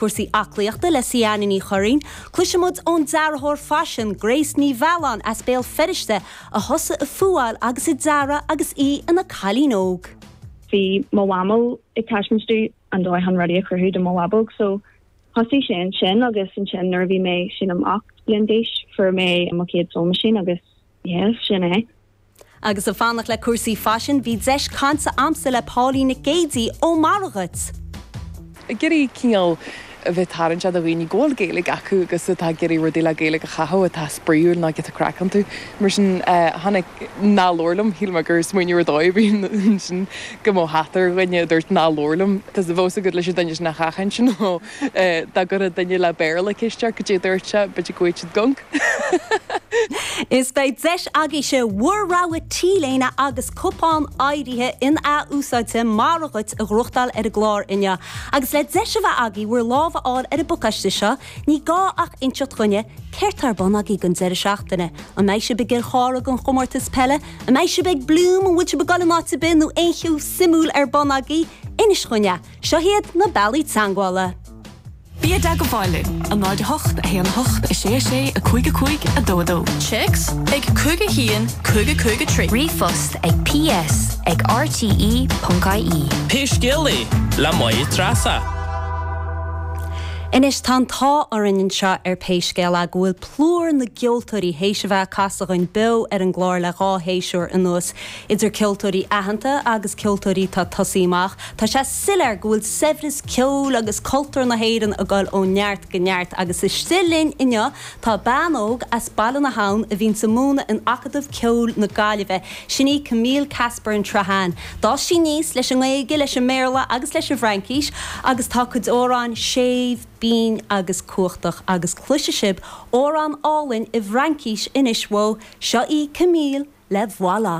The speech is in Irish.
Cúrsaí aclaíochta le Seanie Ní Churraoin. Cloisimid ón dearthóir faisin Grace Ní Mhealláin as Béal Feirste a thosaigh ag fuáil agus ag dearadh agus í ina cailín óg. Bhí mo mhamó ag taispeáint domh an dóigh chun rudaí a chruthú do mo bhábóg so thosaigh sé ansin agus ansin nuair a bhí mé sílim ocht bliain d'aois fuair mé mo chéad sewing machine agus Yes, sin é. Agus ag fanacht le cúrsaí faisin, bhí deis cainte agamsa le Pauline Nic Géidigh ó Mora Dhuit. ag iarraidh cineál a bheith tarraingteach do dhaoine go bhfuil Gaeilge acu agus atá ag iarraidh rudaí le Gaeilge a chaitheamh atá spraíúil ná giota craic iontu. Mar sin, tháinig Ná labhair liom, shíl mé gur smaoineamh ar dóigh a bhí ansin go mbeadh hata ar dhuine a dúirt Ná labhair liom, because bheadh a fhios agat leis an duine sin a sheachaint, you know. Dá gcuirfeadh duine le Béarla ceist air cad é a dúirt sé, b'fhéidir go bhfaigheadh siad gonc. Is beidh deis agaibhse bhur rogha T-léine agus cupán áirithe in-ath-úsáidte Mora Dhuit a ghnóthachtáil ar an gclár inniu. Agus le deis a bheith agaibh bhur lámh a fháil ar an bpacáiste seo, ní gá ach inseacht dhúinn céard tá ar bun agaibh don deireadh seachtaine. An mbeidh sibh i gCill Chartha ag an Chomórtas Peile? An mbeidh sibh ag Bloom? An bhfuil sibh ag goil in áit ar bith nó aon cheo suimiúil ar bun agaibh? Inis dhúinn é! Seo hiad na bealaí teagmhála. Bí i dteagmháil linn, a 08, a 1, a 8, a 6, a 6, a 5, a 5, a 2, a 2. Téacs, ag a cúig, a haon, a cúig, a cúig, a trí. Ríomhphost, ag, ps, ag, rte.ie. Pé scéal é, le Máire Treasa. Anois, tá an t-ádh orainn anseo ar Pé Scéal é go bhfuil plúr na gceoltóirí théis a bheith ag casadh againn beo ar an gclár le dhá shéasúr anuas. Idir ceoltóirí aitheanta agus ceoltóirí atá ag tosaí amach, tá sé soiléir go bhfuil saibhreas ceoil agus cultúr na hÉireann ag dul ó neart go neart agus istigh linn inniu tá bean óg as Baile na hAbhann a bhíonns ag múineadh in Acadamh Ceoil na Gaillimhe, sin í Camille Casper-An Sraitháin. D'fhás sí aníos leis an nGaeilge, leis an mBéarla agus leis an bhFraincís agus tá a cuid amhrán séimh, binn agus cumhachtach, agus cloisfidh sibh amhrán álainn i bhFraincís anois uaithi, seo í Camille le Voilà!